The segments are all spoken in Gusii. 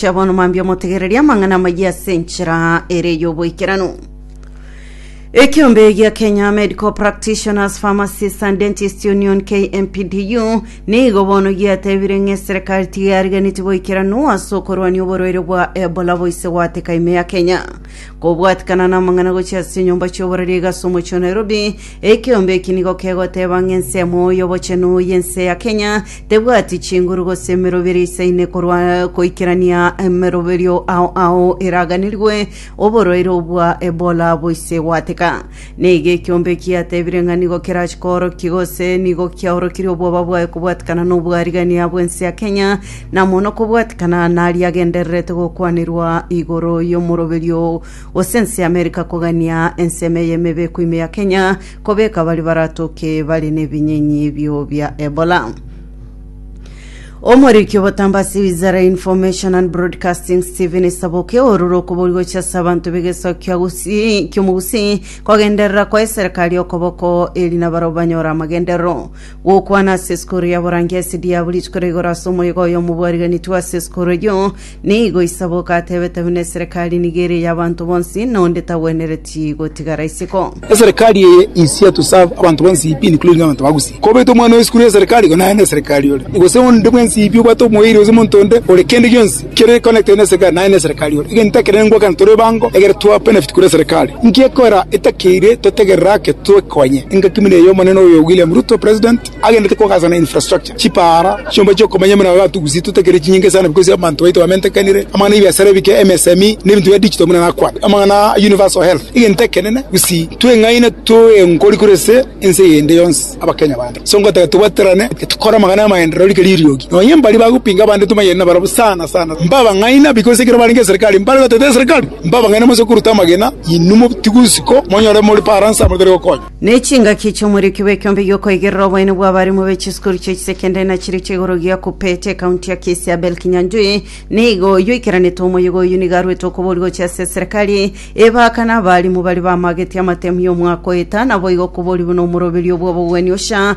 Chia bono mambia omotegererie amang'ana amayia ase enchera ere y'oboikeranu. Ekiombe gia Kenya Medical Practitioners, Pharmacists and Dentists Union KMPDU nigo bono giatebire ng'a eserikari tigariganeti boikeranu ase okorwania oborwaire bwa Ebola boise gwateka ime ya Kenya. Kobwatikana namang'ana gochia ase enyomba chi'oborari iga ase omochie o Nairobi, ekiombe eki nigo kegoteba ng'a ensemo y'obochenu y'ense ya Kenya Tebwati chinguru gose emerobera isaine korwa goikerania emeroberio ao ao eraganirwe oborwaire obwa Ebola boise gwateka. Nigo ekiombe kiatebire ng'a nigo kerache koorokia gose nigo kiaorokirie obwoba bwaye kobwatikana nobwarigania bw'ense ya Kenya na mono kobwatikana naria agendererete gokwanirwa igoro y'omoroberio gose ense y'America kogania ensemo eye emebe koime ya Kenya Kobeka baria baratoke bare nebinyenyi ebio bia Ebola. Omoriki obotambe ase wizara ya Information and Broadcasting Stephen Esaboke orure okobori gochia ase abanto b'egesaku kia Gusii ki'omogusii kogenderera kwa eserikari okoboko eri nabarabwo banyore amagenderero gokwana ase esukuru ya Borangia SDA buri rituko rigoro ase omoyega oyomo bwariganetwe ase esukuru eyio Nigo Isaboka atebete buna eserekari nigo ere y'abanto bonsi, na onde tagwenereti gotigara isiko. Eserekari eye is here to serve abanto bonsi pi including abanto ba Gusii. Kobete omwana oye esukuru y'eserekari igo naye n'eserekari ore. Gose onde bwensi pi obwate omoerio gose omonto onde ore kende gionsi kere connected n'eserekari naye n'eserekari ore. Egento ekere nengwakana tore ebango egere twa benefit korwa eserekari. Nki ekora etakeire totegerere ake twekonye engaki buna eye Omonene oyo William Ruto President. Agendete kogaasa na infrastructure, chipaara, chiomba chi'okomanya buna abatugusii totakire chinyinga esano because abanto baito bamentekanire, amang'ana y'ebiasara ebike, MSME, na ebinto bia digital buna nakwate amang'ana a universal health. Egento ekenene gusii tweng'aine toe nkori kore ase ense eyende yonsi abakenya bande. So ngotaka tobwaterane tokore amang'ana y'amaenderero rike ririogi. Nonye mbari bagopinga abande tomanyeti nabarabwo sana sana mba abang'aina because ekero barenge eserekari mbare goteta eserekari mba abang'aina mose koruta amagena inwe motigusi ko monyore more paransa motari gokonya. Nechingaki chi'omorioki bw'ekeombe gi'okoigerera oboene bw'abarimu be chisukuru chie chisekendari na chiria chia igoro gia KUPPET, ekaunti ya Kisii Abel Kinyanjui nigo yoikeranete omoyega oyio nigo arwete okobori gochia ase eserekari ebaka na abarimu baria bamageti amatemu y'omwaka oeta naboigo okobori buna omoroberio bw'obogwenia ocha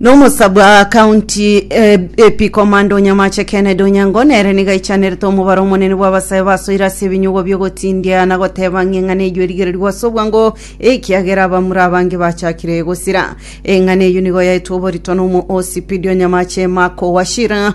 Nomosa bwa County AP Komanda Onyamache Kennedy Onyango nere nigo aichanerete omobaro omonene bw'abasae basoire ase ebinyugwa biogotindia na goteba ng'a eng'ana eyio erigererigwe ase obwango ekiagera abamura abange bachakire gosira. Eng'ana eyio nigo yaetwe oborito n'omohoosi Pidi Onyamache Mark Wachira,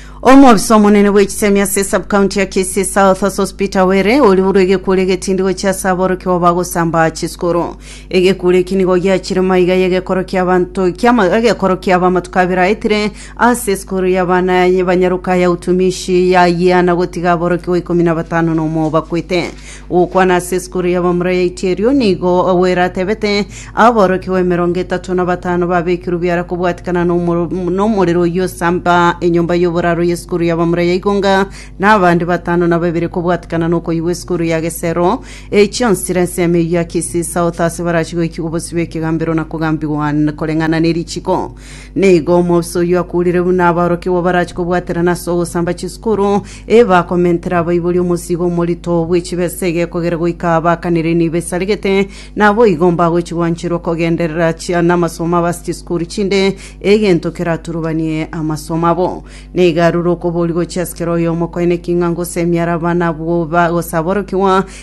Omobisa omonene bw'egisemi ase esabcounty ya Kisii South ase Hospita Were oriborwe egekure egetindi gochia ase aborokigwa bagosamba chisukuru. Egekure eki nigo giachire maiga y'egekoro ki'abanto ki'ama egekoro ki'aba amatuko abere aetire ase esukuru y'abana banyaruka ya Utumishi ya Yiana gotiga aborokigwa ikomi na batano nomo bakwete. Ogokwana ase esukuru ya bamura ya Itierio, nigo Ogwera atebete, Aborokigwa emerongo etato na batano babekirwe biara kobwatikana nomo- nomorero oyio osamba enyomba y'oboraro y'esukuru ya bamura ya Igonga, na abande batano na babere kobwatikana nokoyigwa esukuru ya Gesero. Eye chionsi chire ensemo eyio ya Kisii South ase barache goikigwa bosio bw'ekegambero na kogambigwa n- koreng'ana nerichiko. Nigo omouso oyio akurire buna aborokigwa barachie kobwaterana ase ogosamba chisukuru, ebakomentera abaibori omosiigo omorito bwe chibesa egekogera goika baakanire nibo esaregete, naboigo mbagochi gwancherwa kogenderera chia namasomo abo ase chisukuru chinde, egento keraturubanie amasomo abo. Nigo arure okoboria gochia ase kera oyomo kwaye neki ng'a ngose emiaraba nabwo ba gose aborokigwa,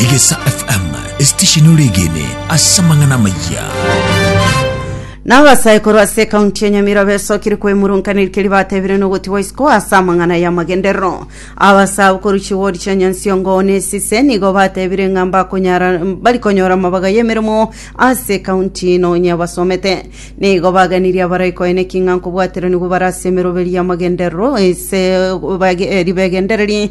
Egesa FM esitesheni ore egene ase amang'ana amayia. Nao abasae korwa ase ekaunti ya Nyamira besokire kwemurunkanirikia ribatebire nogotigwa isiko ase amang'ana y'amagenderero. Abasae abo korwa chiwodi chia Nyansiongo na Esise nigo batebire ng'a mbakonyara bari konyora amabaga y'emeremo ase ekaunti ino onye basomete. Nigo baganirie abarai koeneki ng'a nkobwateranigwa bare ase emeroberio y'amagenderero ase bage- eh, ribegendereri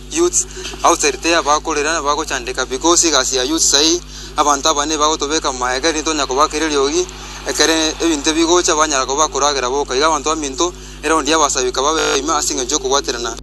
Youths outside tiga bakorera na bagochandeka because egasi ya youths ai abanto aba nigo bagotobeka moyo ekere nitonya kobakera eriogi ekere ebinto ebi bigocha banyara koba bakoragera boka iga abanto baminto eraundi y'abasabika babe ime ase engencho y'okobwaterana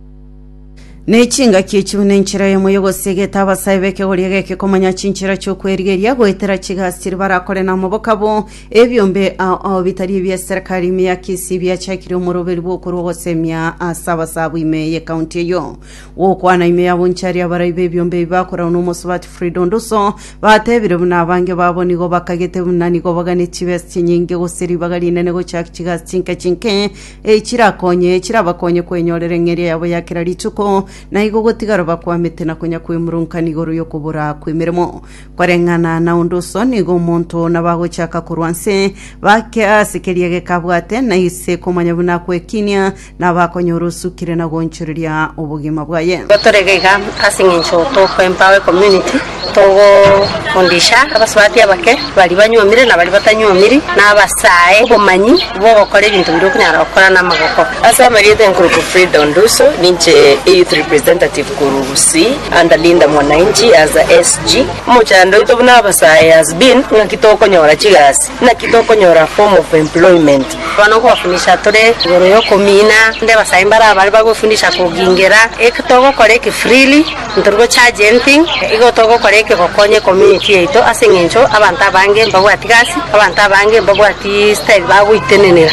Ne chingaki echiu nenchera yamo yogosegeta abasae b'ekegori ege ekekomanya chinchera chi'okwerigeria goetera chigasi chiria barakore na omoboka bo. Ebiombe ao ao bitari ebi'eserekari ime ya Kisii biachakire omoroberio bw'okorwa ogosemia ase abasaabwa ime y'ekaunti eyio. Gokwana ime ya Bonchari abarai b'ebiombe ebi bakoragwa n'omosubati Frida Onduso batebire buna abange babo nigo bakagete buna nigo bagane chibesa chinyinge gose ribaga rinene gochak chigasi chinke chinke echirakonye echirabakonye kwenyorera eng'eria yabo ya kera rituko na igo gotigara bakwamete na konya kwemurunka igoro y'okobora kw'emeremo. Koreng'ana na onde oso nigo omonto nabagochaka korwa inse, bake ase keria geka abwate, na ise komanya buna akw'ekinia, nabakonyora osukire na goonchoreria obogima bwaye. Gotorega iga ase engencho togo empower community togo fundisha abasubati abake bari banyuomire na bari batanyuomiri na abasae obomanyi bogokora ebinto biri okonyara gokora na amagoko. Ase amarieta enkuruku Frida Onduso ninche e youth representative Kurusi and Linda Mwananchi as a SG. Omochando oito buna abasae has been ng'aki tokonyora chigasi? Naki tokonyora form of employment? Bono gwafunisha tore igoro yokomina onde abasae mbare abare bagofunisha kogingera eke togokora eke freely ntori go charge anything igo togokora eke gokonya ecommunity yaito ase eng'encho abanto abange mbabwati gasi abanto abange mbabwati style bagoitenenera.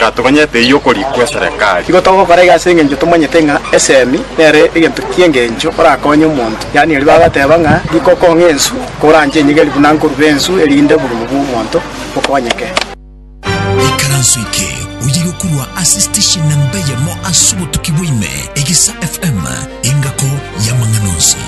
Gatogonyete eyio okori kw'eserekari. Igo togokora iga ase engencho tomanyete ng'a esemi nere egento ki'engencho orakonye omonto. Yaani erio bagateba ng'a riko okong'a ensu, koranche enyegeri buna nkorure ensu erinde oborimo bw'omonto bokonyeke. Ikaranso eke oye gokurwa ase station namba eyemo ase obotuki bwa ime, Egesa FM, engako y'amang'ana onsi.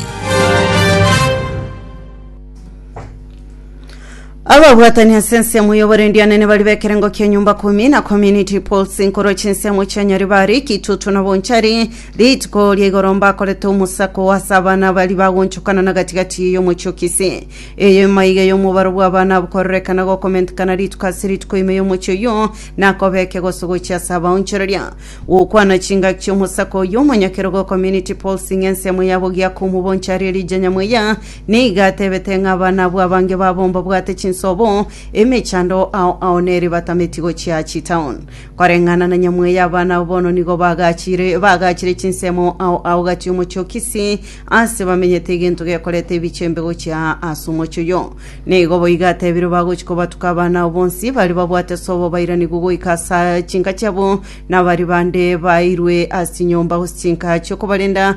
ababwatani ase ensemo y'oborendi anene bari b'ekerengo ki'enyomba kumi na community pulse nkoro chinsemo chia nyaribari kitutu na bonchari rituko ria igoro mbakorete omosako wase abana bari bagonchokana na gatigati y'omochio kisi eye maiga y'omobaro bw'abana abokororekana gokomentekana rituko ase rituko ime y'omochio yo nakobeke gosogochia ase abaonchoreria gokwana chingaki chi'omosako oyo omonyakero go community pulse ng'ensemo yabo giakomu bonchari erija nyamweya Nigo atebete ng'a abanabwo abange babo mbabwate chinsobo, emechando ao ao nere batameti gochia chitown. Koreng'ana na Nyamweya abana abo bono nigo bagachire bagachire chinsemo ao ao gati omochie o Kisii, aase bamenyete egento gekoreta ebichembe gochia aa ase omochie oyo. Nigo boigo atebire bagochi kobatuka abana ao bonsi bare babwate sobo bairanigwe goika ase aa chinka chiabo, na baria bande baeirwe ase chinyomba gose chinka chiokobarenda,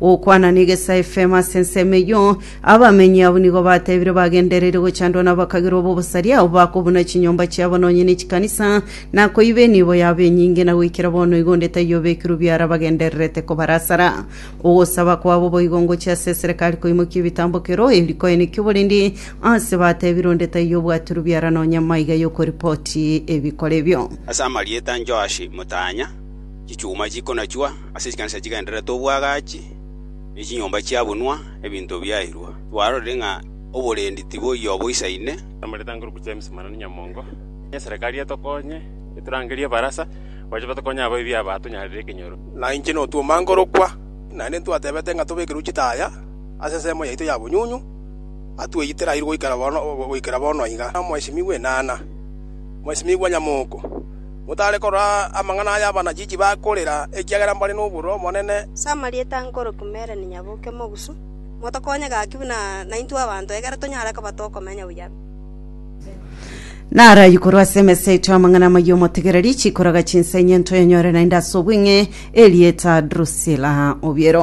Gokwana negesa efemo ase ensemo eyio, abamenyi abwo nigo batebire bagendereire gochandwa nabakagerwa b'obosaria abwo bakobuna chinyomba chiabo nonye ne chikanisa, na koiba enibo yabo enyinge, na goikera bono igo onde taiyo obekirwe biara bagendererete kobarasara. Ogosaba kwabo boigo ngochia ase eserekari koimokia ebitambo kera oyo riko ene ki'oborendi aase batebire onde taiyo obwatirwe biara nonye maiga yokoripoti ebikora ebio. Ase amarieta 'Joashi motanya, chichuma chikonachwa, Ase chikanisa chigendererete obwagachi, ne chinyomba chiabunwa, ebinto biairwa. Twarorire ng'a oborendi tiboyia oboisaine. Namorete anguru ku James Manoni Nyamongo, onye eserekari etokonye, eturangerie ebarasa, bache batokonye abaibi aba atonyarire ekenyoro. Na inche notwoma nkorokwa, naende ntwatebete ng'a tobekerwe chitaya ase ensemo yaito ya bonyunyu, atweyie terairu goikera bono, goikera bono iga. Omwesimigwa enana, omwesimigwa nyamoko. Motare korora amang'ana aya abanachichi bakorera, ekiagera mbare noborua omonene. Samaria tankoroki mere ninya boke mogusu, motokonye gaki buna naintwe abanto, egere tonyare koba tokomenya buya. Narayi korwa ase emesa yaito y'amang'ana amayia omotegereri, chikoroga chinsa enye ntoyanyore naende ase obweng'e, erieta Drusila obiero.